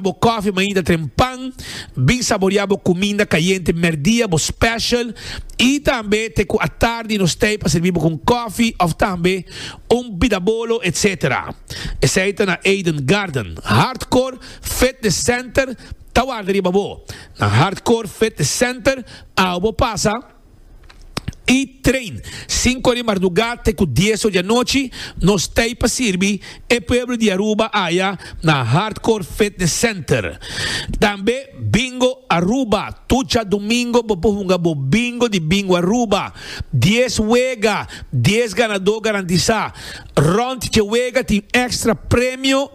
bo kòfi mainta tren pan, bin saboriá bo kuminda kayente mèrdia, bo special, i tambe te ku atardi nos stay pa sirbi bo ku un kòfi òf tambe un bidabolo etc. Esei ta na Eden Garden. Hardcore Fitness Center ta warda riba bo. Na Hardcore Fitness Center, au bo pasa. i train sinku di mardugá te ku dieso di anochi nos tei pa sirbi e pueblo di Aruba aya na Hardcore Fitness Center. Tambe Bingo Aruba, tur dja domingo bo por hunga bo bingo di Bingo Aruba. Dies wega, dies ganadó garantisá. Rònt dje wega tin èkstra premio.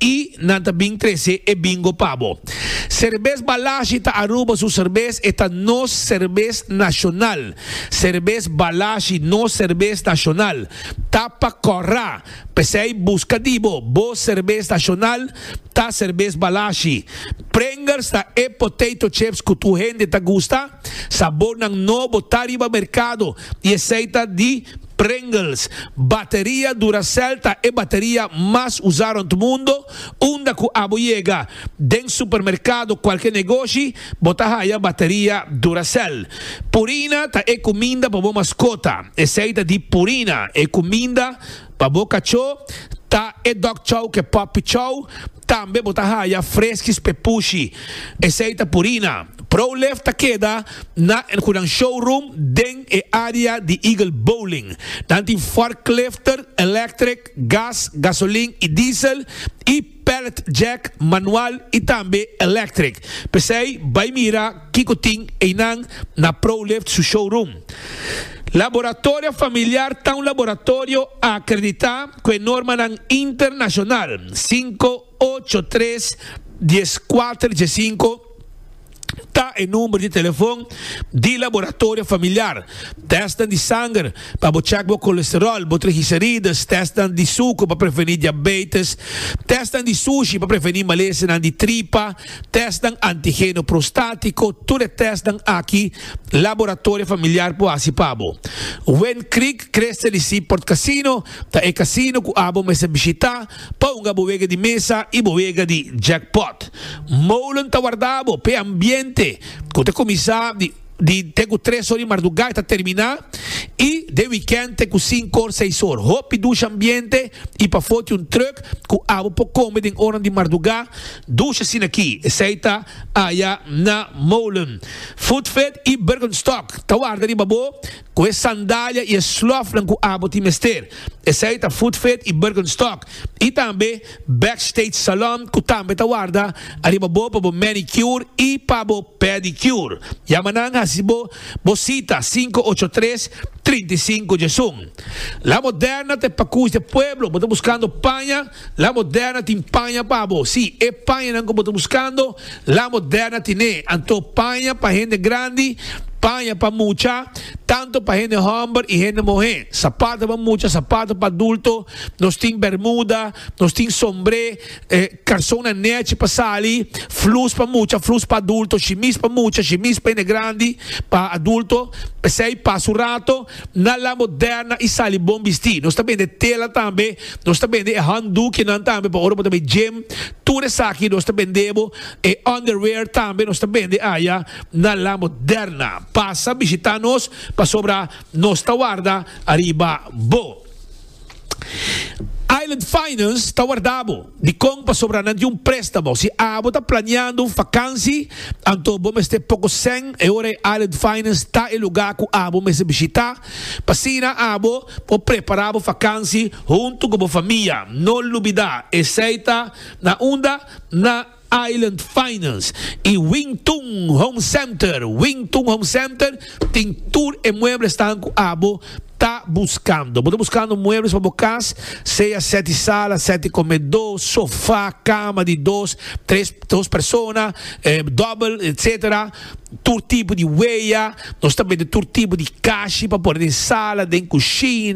I nan ta bin trese e bingo pa bo. Serbes Balashi ta Aruba su serbes, e ta nos serbes nashonal. Serbes Balashi, nos serbes nashonal, ta pa kòrra. P'esei buska di bo, bo serbes nashonal ta serbes Balashi. Pringles ta e potato chips ku tur hende ta gusta. Sabornan nobo ta riba merkado i esei ta di. Pringles, Bateria Duracell ta e bateria mas usá rònt mundo, unda ku abo yega den supermerkado kualke negoshi bo ta haya bateria Duracell. Purina ta e kuminda pa bo maskota, esei ta di Purina, e kuminda pa bo kachó ta e Dog Chow ke Puppy Chow, Tambe bo ta haya freskis p'e pushi. Esei ta Purina. ProLift ta keda na El Hunan Showroom den e área di Eagle Bowling. Nan tin forklifter, electric, gas, gasolin i diesel, i pallet jack, manual i tambe electric. P'esei bai mira. Kiko tin einan na ProLift su showroom? Laboratorio Familiar ta un laboratorio akreditá ku e normanan internashonal sinku ocho tres dies kuater diesinko ta e number di telefon di Laboratorio Familiar. Tèstnan di sanger pa bo chèk bo kolesteròl, bo trigiserides, tèstnan di suker pa prevení diabeites, tèstnan di sushi pa prevení malesenan di tripa, tèstnan antigeno prostátiko, tur e tèstnan aki Laboratorio Familiar por hasi pa bo. Wind Creek Crest LEC Port Casino ta e casino cu abo mester bishita pa hunga bo wega di mesa y bo wega di jackpot. Molen ta warda bo p'e ambiente cu ta cuminsa di. Di te ku tres or di mardugá e ta terminá i den wikènt te ku sinku or, seis or. Hopi dusha ambiente i pafó tin un trùk ku abo por kome den oranan di mardugá. Dusha sinakí esei ta aya na Molen, Foodfed i Bergenstock ta warda riba bo. Cu e sandalia y e slofnan cu abo tin mester, esey ta Footfit y Birkenstock, y tambe Backstage Salon cu tambe ta warda ariba bo pa bo manicure y pa bo pedicure. Yama nan haci bo bo cita cinco ocho tres, trinta y cinco djesun. La Moderna ta e pacush di e pueblo, bo ta buscando paña? La Moderna tin paña pa bo. Sí, e pañanan ku bo ta buskando, La Moderna tin'é. Anto paña pa hende grandi, paña pa mucha, tantu pa hende hòmber i hende muhé, sapato pa mucha, sapato pa adulto, nos tin bermuda, nos tin sombré, karsonnan nèchi pa sali, flus pa mucha, flus pa adulto, shimis pa mucha, shimis pa hende grandi, pa adulto. P'esei, pas un rato, na La Moderna i sali bon bistí. Nos ta bende tela tambe, Nos ta bende e handdoekjenan tambe pa ora bo ta bay gym, tur esaki nos ta bende bo, e underwear tambe nos ta bende aya na La Moderna. Pasa bishita nos pasobra nos ta warda ariba bo. Island Finance ta warda bo. Dikon? Pasobra nan tin un prestamo. Si abo ta planeando un fakansi, anto bo mester poko sèn e ora e Island Finance ta e lugar ku abo mester bishita. Pasina abo por prepará bo fakansi huntu ku bo famia. No lubidá esei ta na unda? Na Island Finance i Wing Tun Home Center. Wing Tun Home Center tin tur e mueblesnan ku abo ta buskando. Bo ta buskando muebles pa bo kas, sea sèti sala, sèti komedó, sofá, kama di dos, tres, dos persona, dòbel, etsetera. tur tipo di weya, nos ta mete tur tipo di kashi pa pone den sala, den kusina.